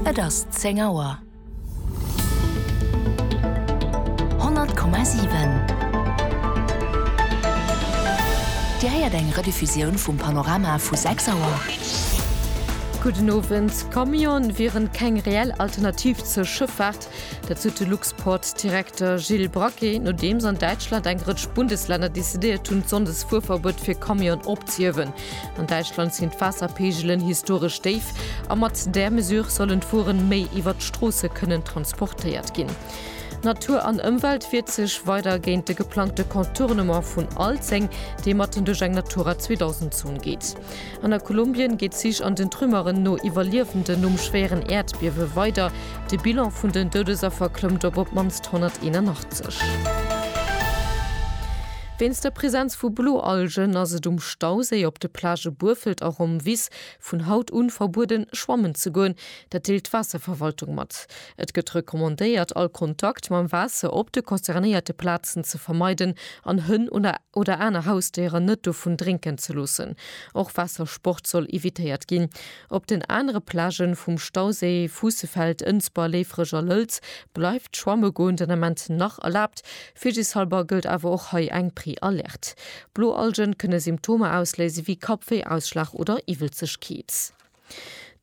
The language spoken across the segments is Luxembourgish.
Et ass zéng Auer. 100,7 Dir héiert eng Rediffusioun vum Panorama vu 6 Auer. Gudden Owend. Camionen wieren keng reell Alternativ zur Schëffaart. Dat sot de Luxport-Direkter Gilles Braquet, nodeems an Däitschland eng Rëtsch Bundeslänner decidéiert hunn, d'Sonndesfuerverbuet fir Camionen opzehiewen. An Däitschland sinn d'Waasserpeegelen historesch déif a mat där Mesure sollen d'Wueren méi iwwert d'Stroosse kënnen transportéiert ginn. Natur an Ëmwelt wiert sech weider géint de geplangte Contournement vun Alzeng, dee matten duerch eng Natura 2000 Zon geet. An a Kolumbien geet d'Sich an den Trümmeren no Iwwerliewenden nom schwéieren Äerdbiewe weider. De Bilan vun den Doudesaffer klëmmt op op d'mannst 181. Wéinst der Präsenz vu Bloalgen ass et um Stauséi op de Plagë Burfelt a Romvis vun haut un verbueden schwammen ze goen. Dat deelt d'Waasserverwaltung mat. Et gëtt recommandéiert all Kontakt mam Waasser op de concernéierte Plazen ze vermeiden an Hënn oder aner Hausdéieren net dovun drénken ze loossen. Och Waassersport soll evitéiert ginn. Op den anere Plagë vum Stauséi, Fuussefeld, Ënsber, Léifreg a Lëlz, bleift schwamme goen den Ament nach erlaabt. Virsichshalber gëllt awer och hei eng Préalerte. Blo Algen kënne Symptomer ausléise wéi Kappwéi, Ausschlag oder Iwwelzegkeet.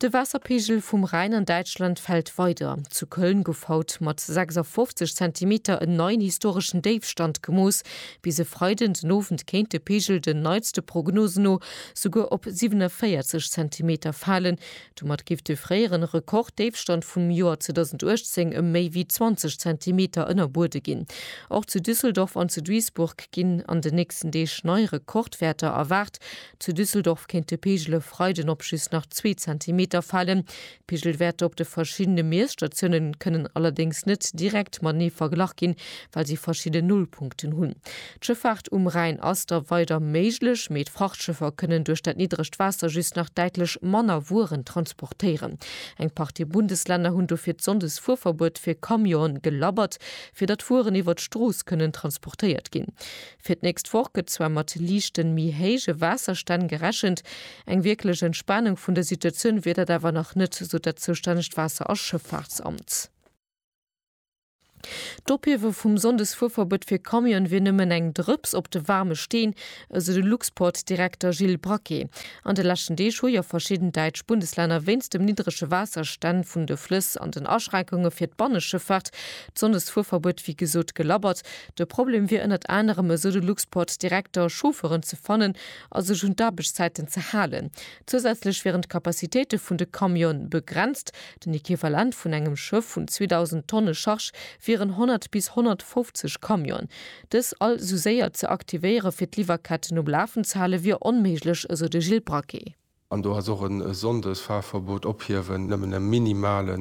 De Waasserpeegel vum Rhäin an Däitschland fält weider. Zu Köln gouf haut mat 56 Zentimeter en neien historeschen Déifstand gemooss. Bis e Freiden den Owend kéint de Peegel den neitste Prognosen no souguer op 47 Zentimeter falen, Domat géif de fréieren Rekorddéifstand vum Joer 2018 ëm méi wéi 20 Zentimeter ënnerbuede ginn. Och zu Düsseldorf an zu Duisburg ginn an den nächsten Deeg nei Rekordwäerter erwaart. Zu Düsseldorf kéint de Peegel e Freiden op just nach zwee Zentimeter falen. D'Peegelwäerter op de verschiddene Miesstatiounen kënnen allerdéngs net direkt matenee verglach ginn, well si verschidden Nullpunkten hunn. D'Schëffaart um Rhäin ass da weider méiglech, mee d'Frachtschëffer kënnen duerch dat niddregt Waasser just nach däitlech manner Wueren transportéieren. Eng Partie Bundeslänner hunn dofir d'Sonndesfuerverbuet fir Camionen gelabbert, fir datt Wueren iwwer d'Strooss kënnen transportéiert ginn. Fir d'nächst Woch gëtt zwar mat liichten, méi héije Waasserstänn gerechent. Eng wierklech Entspanung vun der Situatioun wier dat awer nach net, sot dat zoustännegt Waasser a Schëffaartsamt. D'Ophiewe vum Sonndesfuerverbot fir Camionen wier nëmmen eng Drëps op de waarme Steen, esou de Luxport-Direkter Gilles Braquet. An de leschten Deeg hu jo verschidden däitsch Bundeslänner wéinst dem niddrege Waasserstänn vun de Flëss an den Aschränkunge fir d'Banneschëffaart d'Sonndesfuerverbuet wéi gesot gelabbert. De Problem wier ënnert anerem, esou de Luxport-Direkter, Chauffeuren ze fannen a sech un d'Aarbechtszäiten ze halen. Zousätzlech wieren d'Capacitéite vun de Camione begrenzt, Den Equivalent vun engem Schëff vun 2.000 Tonne Charge wieren 100 bis 150 Camionen. Dës all esou séier ze aktivéiere fir d'Liwwerketten um Lafen ze hale wier onméiglech, esou de Gilles Braquet. An do ass och e Sonndesfahrverbot ophiewen nëmmen e minimale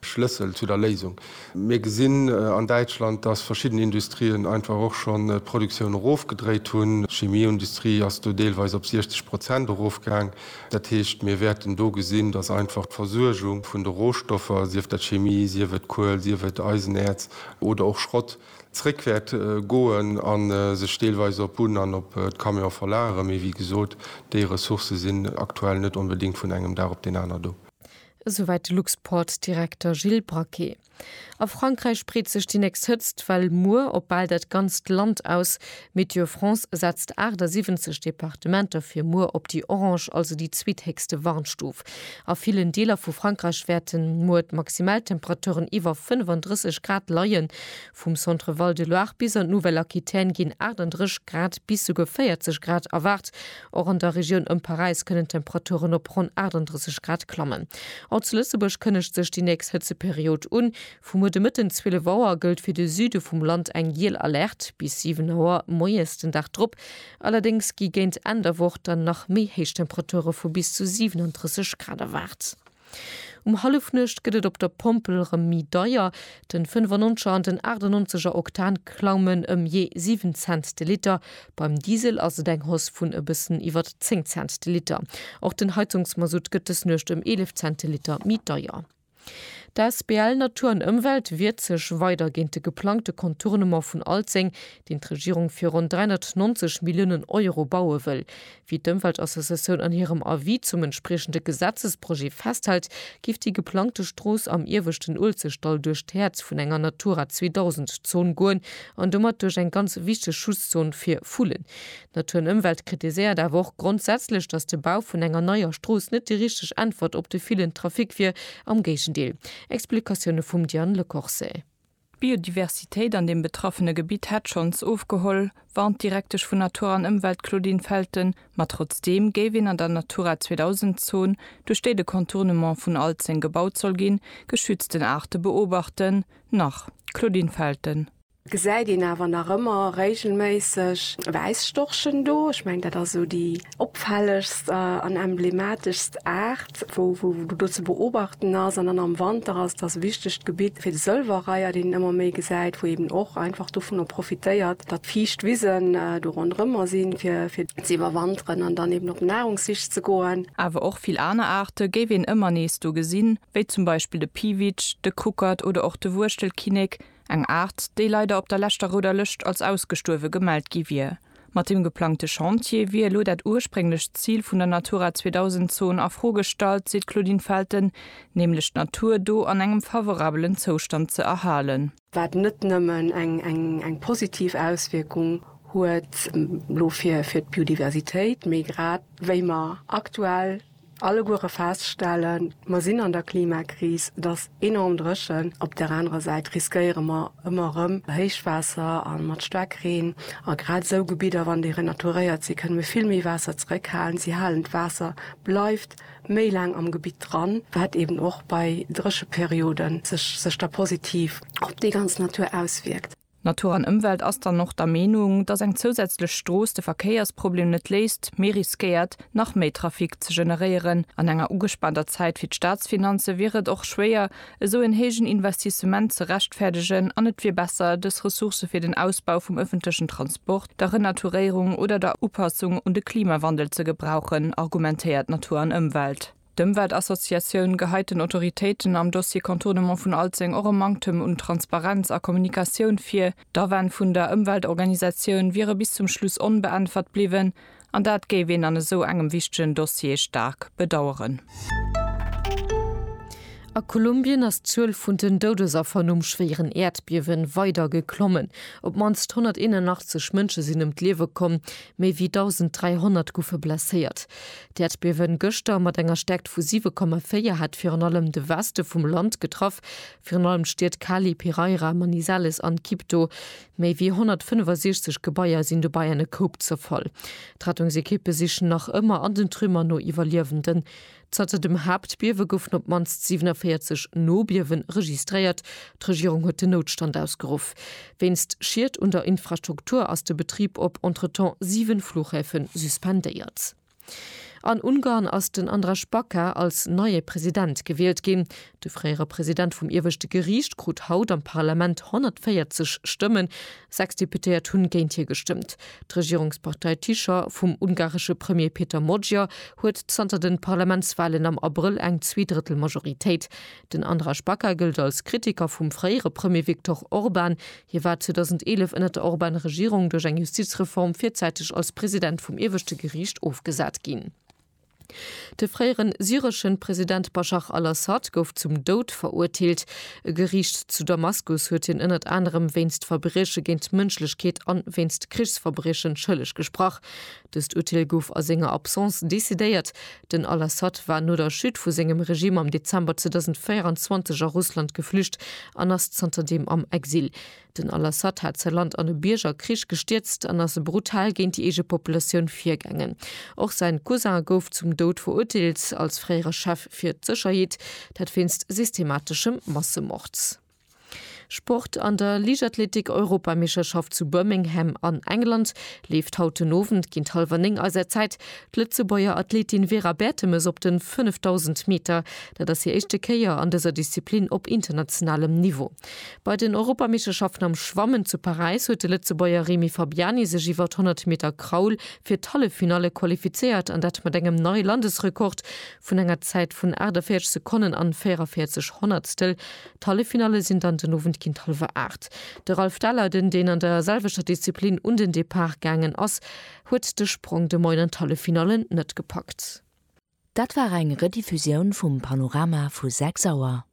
Schlëssel zu der Léisung. Mir gesinn an Däitschland, datt verschidden Industrien einfach och schonn d'Produktioun erofgedréit hunn. D'Chimieindustrie ass do deelweis op 60 Prozent erofgaang. Dat heescht, mir wäerten do gesinn, dass einfach d'Versuergung vun de Rohstoffer, sief dat Chemie, sief et Kuel, sief et Eisenäerz oder och Schrott, zréck wäert goen a sech deelweis op d'Bunn an op d'Camione verlagere. Mee wéi gesot, déi Ressourcë sinn aktuell net onbedéngt vun engem Dag op deen aner do. Esouwäit de Luxportdirekter Gilles Braquet. A Frankräich breet sech déi nächst Hëtzt Well muer op bal dat ganzt Land aus. Météo France setzt 78 Departementer fir muer op déi orange, also déi zweethéchste Warnstuf. A villen Deeler vu Frankräich wäerte muer d'Maximaltemperaturen iwwer 35 Grad leien. Vum Centre-Val de Loire bis an d'Nouvelle-Aquitaine ginn 38 Grad bis souguer 40 Grad erwaart. Och an der Regioun ëm Paräis kënnen d'Temperaturen op ronn 38 Grad klammen. All zu Lëtzebuerg kënnegt sech déi nächst Hëtzeperiod un. Vu muer de Mëtten 12 Auer gëllt fir de Süde vum Land eng giel Alerte bis 7 Auer moies den Dag drop. Allerdéngs gi géint Enn der Woch dann nach méi héich Temperature vu bis zu 37 Grad erwaart. Um Hallefnuecht gëtt et op der Pompel rem mi deier. Den 95 er an den 98 er Oktan klaumen em jee 7 Cent de Liter. Beim Diesel ass et eng Hausse vun e bëssen iwwert 10 Cent de Liter. Och den Heizungsmasutt gëtt des Nuecht em 11 Cent de Liter mi deier. D'Asbl Natur an Ëmwelt wiert sech weider géint de geplangte Contournement vun Alzeng, deen d'Regierung fir ronn 390 Milliounen Euro baue wëll. Wéi d'Ëmweltassociatioun an hirem Avis zum entspriechende Gesetzesprojet festhält, géif déi geplangte Strooss am ieweschten Uelzechtdall duerch d'Häerz vun enger Natura 2000 Zon goen an domat duerch eng ganz wichteg Schutzzon fir Vullen. Natur an Ëmwelt kritiséiert awer och grondsätzlech, datt de Bau vun enger neier Strooss net déi richteg Äntwert op de villen Trafic wier, am Géigendeel. Explikatioune vum Diane Lecorse. D'Biodiversitéit an deem betraffene Gebitt hätt schonns ofgeholl, warnt d'Direktesch vun Natur an Ëmwelt Claudine Felten. Ma trotzdeem géif een an der Natura 2000 Zon, duerch déi de Contournement vun Alzeng gebaut soll ginn, geschützten Aarte beobachten. Nach, Claudine Felten. Gesäit een awer nach ëmmer réigelméisseg Wäisstorchen do. Ech mengen, dat ass esou déi. Opfällegst an emblemateschst Aart, wou do ze beobachten ass an dann am Wanter ass, dass e wichtegt Gebitt fir de Sëlwerreiher, deen een ëmmer méi gesäit, wou eeben och einfach dovunner profitéiert, datt fiicht Wisen do ronderëmmer sinn, fir ze iwwerwanteren an dann eeben op Nahrungssich ze goen. Awer och vill aner Aarte géif een ëmmer nees do gesinn, wéi zum Beispill de Piwitsch, de Kuckert oder och de Wuechtelkinnek, eng Aart, déi leider op der leschter Rouder Lëscht als ausgestuerwe gemellt gi wier. Mat deem geplangte Chantier wier elo dat ursprénglecht Zil vun der Natura 2000 Zon a Fro gestallt, seet d'Claudine Felten, nämlech d'Natur do an engem favorabelen Zoustand ze erhalen. Wat net nëmmen eng positiv Auswierkung huet elo fir d'Biodiversitéit, mee grad wéi mer aktuell, Alleguere feststellen, mer sinn an der Klimakris, et ass enorm dréchen. Op där anerer Säit riskéiere mer ëmmer erëm Héichwaasser a mat Staarkreen. A grad esou Gebidder, wann déi renaturéiert sinn, kënne mir vill méi Waasser zeréckhalen. Si halen d'Waasser, bleift méi laang am Gebitt dran, wat eeben och bei Drécheperioden sech da positiv op déi ganz Natur auswierkt. Natur an Ëmwelt ass dann och der Meenung, datt eng zousätzlech Strooss de Verkéiersproblem net léist, mee riskéiert, nach méi Trafic ze generéieren. An enger ugespaanter Zäit fir d'Staatsfinanze wier et och schwéier, esou en héijen Investissement ze rechtfäerdegen an et wier besser, dës Ressourcë fir den Ausbau vum ëffentlechen Transport, der Renaturéierung oder der Upassung un de Klimawandel ze gebrauchen, argumentéiert Natur an Ëmwelt. D'Ëmweltassociatioun geheit den Autoritéiten am Dossier Contournement vun Alzeng och e Manktem un Transparenz a Kommunikatioun vir. D'Awänn vun der Ëmweltorganisatioun wiere bis zum Schluss onbeäntwert bliwwen, an dat géif een an esou engem wichtegen Dossier staark bedaueren. A Kolumbien ass d'Zuel vun den Doudesaffer nom schwéieren Äerdbiewen weider geklommen. Op d'mannst 181 Mënsche sinn ëm d'Liewe komm, méi wéi 1.300 goufe blesséiert. D'Äerdbiewen gëschter mat enger Stäerkt vu 7,4 hat virun allem de Weste vum Land getraff, virun allem d'Stied Cali, Piraira, Manizales an Quibdó. Méi ewéi 165 Gebaier sinn dobäi an e Koup zerfall. D'Rettungsekippe sichen nach ëmmer an den Trümmer no Iwwerliewenden. Zanter dem Haaptbiewe goufen op d'mannst 47 Nobiewe registréiert. D'Regierung huet den Noutstand ausgeruff. Wéinst Schied un der Infrastruktur ass de Betrib op entretemps 7 Flughäfe suspendéiert. An Ungarn ass den Andras Baka als neie President gewielt ginn. De fréiere President vum ieweschte Geriicht krut haut am Parlament 140 Stëmmen, sechs Deputéiert hunn géint hie gestëmmt. D'Regierungspartei Tisza vum ungaresche Premier Peter Magyar huet zanter de Parlamentswalen am Abrëll eng Zweedrëttelmajoritéit. Den Andras Baka gëllt als Kritiker vum fréiere Premier Viktor Orban. Hie war 2011 ënner der Orban-Regierung duerch eng Justizreform virzäiteg als President vum ieweschte Geriicht ofgesat ginn. De fréiere syresche President Baschar al-Assad gouf zum Doud verurteelt. E Geriicht zu Damaskus huet hien ënnert anerem wéinst Verbrieche géint d'Mënschlechkeet an wéinst Krichsverbriechen schëlleg gesprach. Dëst Urteel gouf a senger Absence decidéiert. Den al-Assad war no der Chute vu sengem Regime am Dezember 2024 a Russland geflücht an ass zanterdeem am Exil. Den al-Assad hat säi Land an e Biergerkrich gestierzt an ass brutal géint déi eege Populatioun virgaangen. Och säin Cousin gouf zum Doud verurteelt, als fréiere Chef fir d'Sécherheet, dat wéinst systemateschem Massemord. Sport, An der Liichtathletik-Europameescherschaft zu Birmingham an England leeft haut den Owend géint hallwer 9 eiser Zäit d'Lëtzebuerger Athletin Vera Bertemes op de 5000 Meter. Dat ass hir éischte Kéier an dëser Disziplin op internationalem Niveau. Bei den Europameeschterschaften am Schwammen zu Paräis huet de Lëtzebuerger Remy Fabiani sech iwwer d'Honnert Meter Kraul fir d'Halleffinalle qualifizéiert an dat mat engem neie Landesrekord vun enger Zäit vun 48 Sekonnen an 44 Honnertstel. D'Halleffinalle sinn dann den Owend géint hallwer 8. De Ralph Dahler, den deen an der selwechter Disziplin un den Depart gaangen ass, huet de Sprong de Moien an d'Halleffinalle net gepackt. Dat war eng Rediffusioun vum Panorama vu 6 Auer.